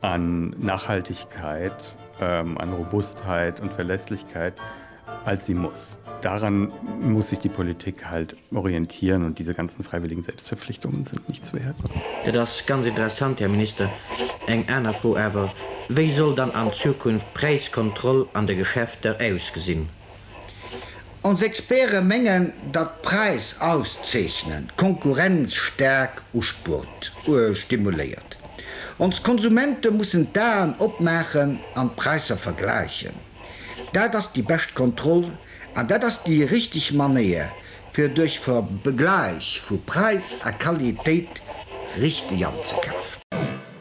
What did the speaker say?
an Nachhaltigkeit, an Robustheit und Verlässlichkeit als sie muss. Daran muss sich die Politik halt orientieren und diese ganzen freiwilligen Selbstverpflichtungen sind nichts wert. Dat ass ganz interessant, Här Minister. Eng aner Fro awer, Wéi soll dann an Zukunft d'Präiskontroll an de Geschäfter ausgesinn? Ons Experte mengen, datt d'Präis auszeechnen d'Konkurrenz staark uspurt, stimuléiert. Ons Konsumente mussen d'Aen opmaachen an d'Präisser vergläichen. Dat ass déi bescht Kontroll an dat ass déi richteg Manéier, fir duerch Vergläich vu Präis a Qualitéit richteg anzekafen.